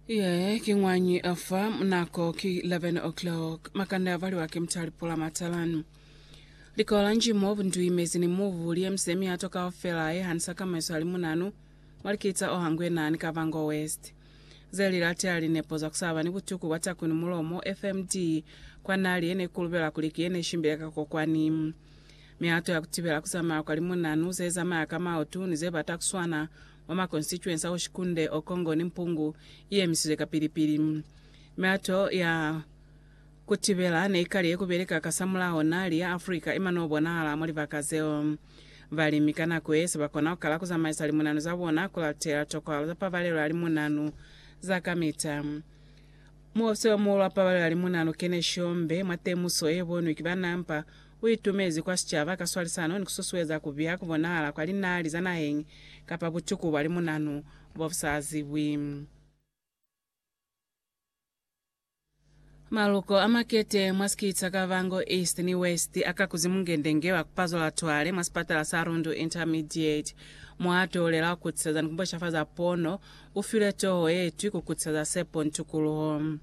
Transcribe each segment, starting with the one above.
Yee, ki ngwañi a fa nako ki 11 o'clock. Makande a valiwa ki mutali pula matalanu. Likola nji mo bundui mezi ni mubu li emise miato kaufela ye hanisa ka maeswa ali munanu mwa likitsa o hangwe nani Kavango West. Ze li latea linepo za ku saba ni butuku bwa taku ni mulomo, FMD, kwa nali ye ne kulubela kuli ki ye ne shimbile ka kokwani. Miato ya ku tibela ku zamaya kwa limunanu, ze zamaya ka maotu ni ze bata ku swana mwa ma constituency a Oshikunde, Okongo ni Mpungu iyemisizwe kapili-pili. Mihato ya kutibela neikali yekubeleka kasamulaho nali ya Africa iman'o bonahala mwa libaka zeo. Balimi ka nako ye se bakona kukala kuzamaisa limunanu za bona kulatela tokwalo za pabalelo ya limunanu za kamita. Muofisi omuhulu wa pabalelo ya limunanu Kenny Shombe mwa temuso yebonwi ki ba NAMPA U itumezi kwa sicaba ka swalisano ni ku susueza ku biha ku bonahala kwa linali za naheñi kapa butuku bwa limunanu bo bu sa zibwi. Maluko a makete mwa sikiti sa Kavango East ni West a kakuzi mungendenge wa ku pazola twale mwa sipatala sa Rundu Intermediate. Muhato u lela wa ku kutisaza ni ku mbweshafaza pono u filwe toho ye itwi ku kutisaza sepo ni tukuluho.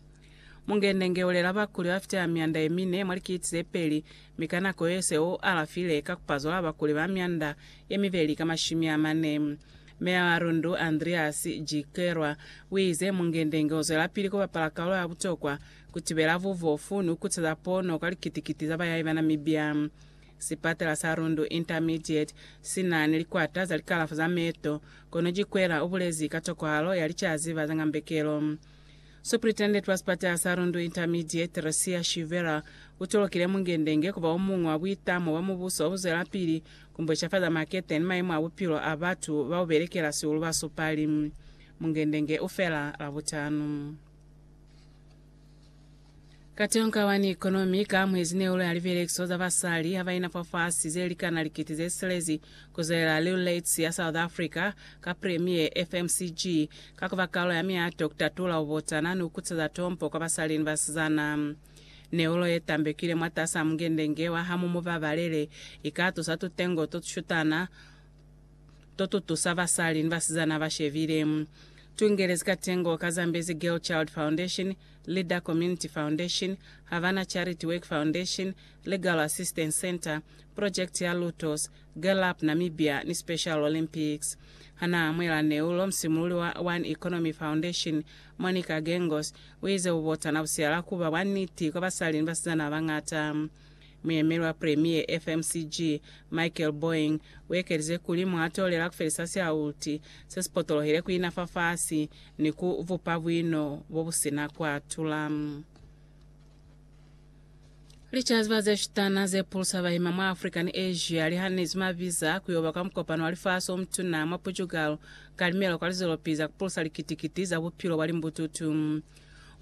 Mungende nge ulela bakuli ba fita mianda ye mine mwa likiti ze peli, mi ka nako ye se u alafile, ka kupazwala bakuli ba mianda ye mibeli ka mashumi a mane. Meya wa Rundu, Andreas Jikelwa, uize, Mungende nge uzwelapili kubapala kalulo ya butokwa kutibela bubofu ni kukuteza pono kwa likiti-kiti za bayahi ba Namibia. Sipatela sa Rundu Intermediate sina ni likwata za likalafo za meeto, kono Jikwela ubulezi ka tokwahalo ya licaziba za ngambekelo. Superintendent wa sipatala sa Rundu Intermediate, Theresia Shivera, u tolokile Mungendenge ku ba o muñwi wa buitamo bwa mubuso wa ku zwelapili ku mbwecafaza makete ni mayemo a bupilo a batu ba u belekela sihulu ba supali. Mungendenge u fela Labutanu. Katonga wa New Economy ka mwezi ne uli a libelekiso za basali ha ba ina fafasi ze likana likiti ze silezi ku zwelela Lil Lates ya South Africa ka Premier FMCG ka ku ba kalo ya miato ku tatula bubotana ni ku kuteza tompo kwa basali ni basizana. Neulo ye tambekile mwatasa mungendenge wa Hamu Mu Babalele i ka tusa tutengo to tu shutana to tu tusa basali ni basizana ba shebile. Tu ingelezi katengo ka Zambezi Girl Child Foundation Leader Community Foundation, Havana Charity Work Foundation, Legal Assistance Centre, Project ya Lutos, Girl Up Namibia ni Special Olympics. Hanaamuhela neulo, musimululi wa One Economy Foundation, Monica Gengos, uize bubotana busihala kuba bwa niti kwa basali ni basizana babañata. Muyemeli wa Premier FMCG, Michael Boeing, uekelize kuli mwatolela kufelisa siaulti sesipotolohile kuina fafasi ni ku bupa buino bobusina kuatula. Licaziba zeshutana zepulusa bahima mwa Africa ni Asia lihanezwi mabiza kuyoba kwa mukopano wa lifasi omutuna mwa Portugal ka limelo kwa lizolopi za kupulusa likiti-kiti za bupilo bwa limbututu.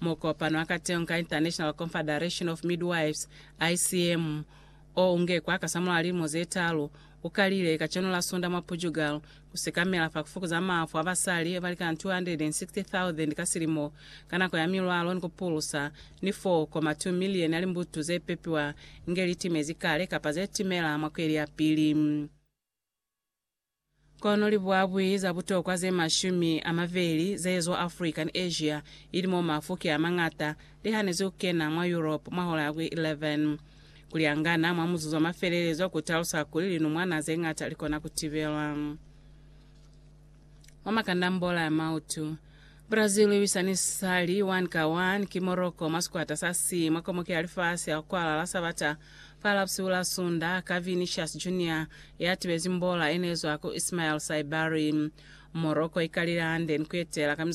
Mukopano wa kateñi ka International Confederation of Midwives, ICM, o unge kwa kasamulaho lilimo ze talu, u kalile kacenu la Sunda mwa Portugal, ku sekamela fa ku fukuza mafu a basali ba likana 260,000 ka silimo ka nako ya milwalo ni ku pulusa ni 4.2 milioni ya limbutu ze pepiwa inge li timezi kale kapa ze timela mwa kweli ya pili. Kono libuabui za butokwa ze mashumi a mabeli ze ezwa Africa ni Asia, ili mo mafu ki a mañata, li hanezi ku kena mwa Europe mwa hola ya ku 11. Ku liangana mwa muzuzu wa mafelelezo ku talusa kuli linumwana ze ñata li kona ku tibelwa. Mwa makandambola a mautu, Brazil i lwisa ni sali 1 ka 1 ki Morocco mwa sikwata sa C mwa Komoke ya Lifasi ya ku Kwalala Sabata Fa lapsiu la Sunda, ka Vinicius Junior ya tibezi mbola e ne zwa ku Ismael Saibari. Morocco i kalile hande ni ku etela ka mizuzu 45.